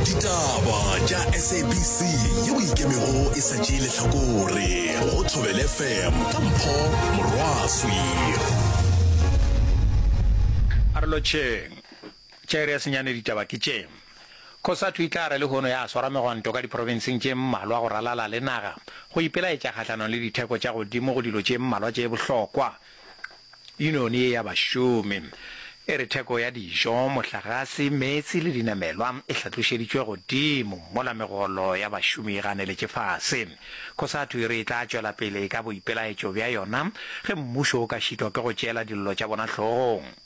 ditaba tša sabc yeo e ikemego e sa tšee lehlakore go thobel fm ka mpho morwaswi a re lotšheng tšere ya senyane ditaba ke tše Cosatu e tla re lehono ya swara megwanto ka diprofenseng tše mmalwa go ralala le naga go ipelaetša kgahlanong le ditheko tša godimo go dilo tše mmalwa tše bohlokwa. Yuniyoni ye ya bašomi e re theko ya dijo, mohlagase, meetse le dinamelwa e hlatlošeditšwe godimo mola megolo ya bašomi e ganeletše fase. Cosatu e re e tla tšwela pele ka boipelaetšo bja yona ge mmušo o ka šitwa ke go tšeela dillo tša bona hlogong.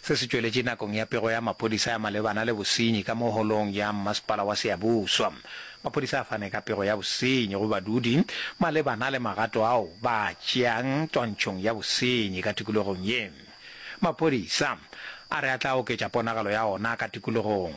Se se tšweletše nakong ya pego ya maphodisa ya malebana le bosenyi ka mo holong ya mmasepala wa Siyabuswa. Maphodisa a fane ka pego ya bosenyi go badudi malebana le magato ao ba a tšeang twantšhong ya bosenyi ka tikologong ye. Maphodisa a re a tla oketša ponagalo ya ona ka tikologong.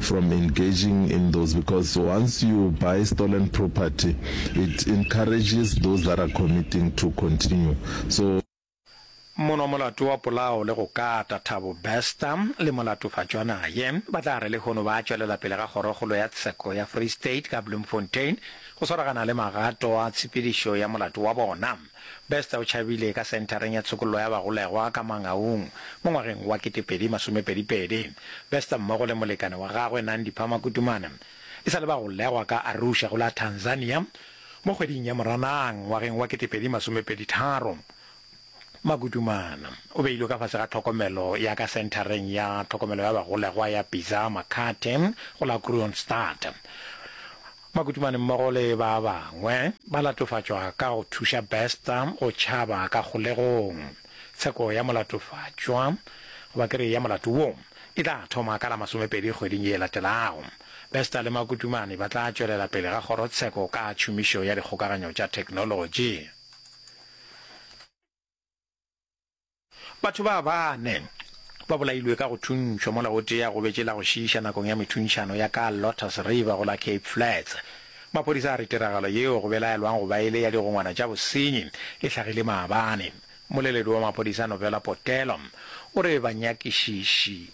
from engaging in those because once you buy stolen property it encourages those that are committing to continue so Mono molato wa polao le go kata Thabo Bester le molatofatšwana ye ba tla re lehono ba tšwelela pele ga Kgorokgolo ya Tsheko ya Free State ka Bloemfontein go swaragana le magato a tshepedišo ya molato wa bona. Bester o tšhabile ka Senthareng ya Tshokollo ya Bagolegwa ka Mangaung mo ngwageng wa ketepedi masomepedi pedi. Bester mmogo le molekane wa gagwe Nandi Phama Kutumana e sa le bagolegwa ka Arusha go la Tanzania mo kgweding ya Moranang ngwageng wa ketepedi masomepedi tharo. Makutumana o beilwe ka fase ga tlhokomelo ya ka Senthareng ya Tlhokomelo ya Bagolegwa ya Bizaa Makhathe go la Kroonstad. Makutumane mmogo le ba bangwe ba latofatšwa ka go thuša Bester go tšhaba ka kgolegong. Tsheko ya molatofatšwa, goba ke re ya molato wo, e tla thoma ka la masomepedi kgweding ye e latelago. Bester le Makutumane ba tla tšwelela pele ga kgorotsheko ka tšhomišo ya dikgokaganyo tša theknolotši. Batho ba bane ba bolailwe ka go thuntšhwa mola o tee a gobetše la go šiiša nakong ya methuntšhano ya ka Lotus River go la Cape Flats. Maphodisa a re tiragalo yeo go belaelwang go ba e le ya digongwana tša bosenyi e hlagile maabane. Mmoleledi wa maphodisa Novela Potelo o re banyakišiši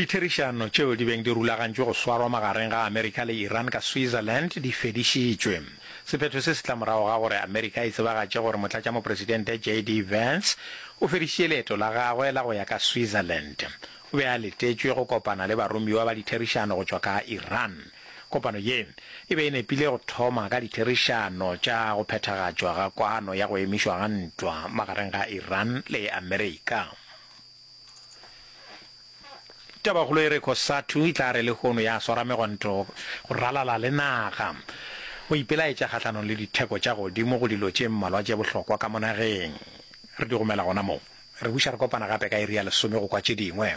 Ditherišano tšeo di beng di rulagantšwe go swarwa magareng ga Amerika le Iran ka Switzerland di fedišitšwe. Sephetho se se tla morago ga gore Amerika e tsebagatše gore Motlatšamopresidente JD Vance o fedišitše leeto la gagwe la go ya ka Switzerland. O be a letetšwe go kopana le baromiwa ba ditherišano go tšwa ka Iran. Kopano ye e be e nepile go thoma ka ditherišano tša go phethagatšwa ga kwano ya go emišwa ga ntwa magareng ga Iran le Amerika. Tabakgolo e re Cosatu e tla re lehono ya swara megonto go ralala le naga, go ipelaetša kgahlanong le ditheko tša godimo go dilo tše mmalwa tše bohlokwa ka mo nageng. Re di romela gona moo. Re buša re kopana gape ka iri ya lesome go kwa tše dingwe.